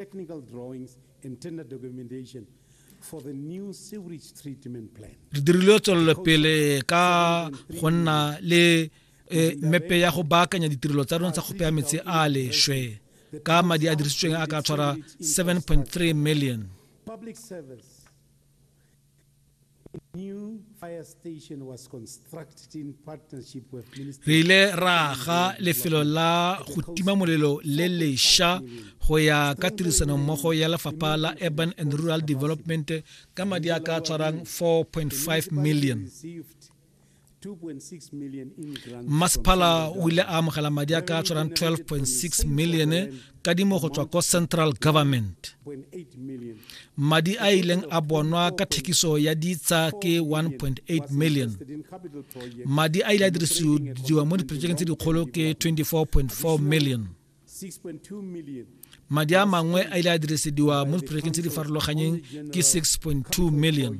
technical drawings and tender documentation for the new sewage treatment plan. Re dirile tswelelopele ka go nna le eh, mepe ya go baakanya ditirelo tsa rona tsa go peya metsi a lešwe ka madi a dirisitsweng a ka tshwara 7.3 million. Public service re ile ra aga lefelo la go tima molelo le lesha go ya ka tirisanommogo ya lefapha la urban and rural development ka madi a ka tshwarang 4.5 million mmasephala o ile a amogela madi a ka tshwarang 12.6 million kadimo go tswa ko central government madi a ileng a bonwa ka thekiso ya ditsa ke 1.8 million madi a ile a dirisiwa mo diprojekeng tse dikgolo ke 24.4 million madi a mangwe a ile a dirisediwa mo diprojekeng tse di farologanyeng ke 6.2 million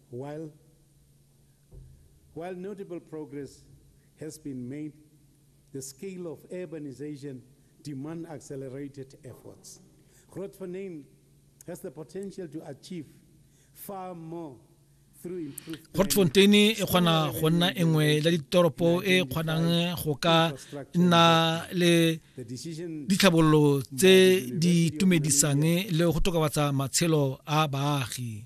While notable progress has been made, the scale of urbanization demand accelerated efforts. Grootfontein has the potential to achieve far more through improved planning. Grootfontein e kgona go nna e nngwe ya ditoropo e e kgonang go ka nna le ditlhabololo tse di itumedisang le go tokafatsa matshelo a baagi.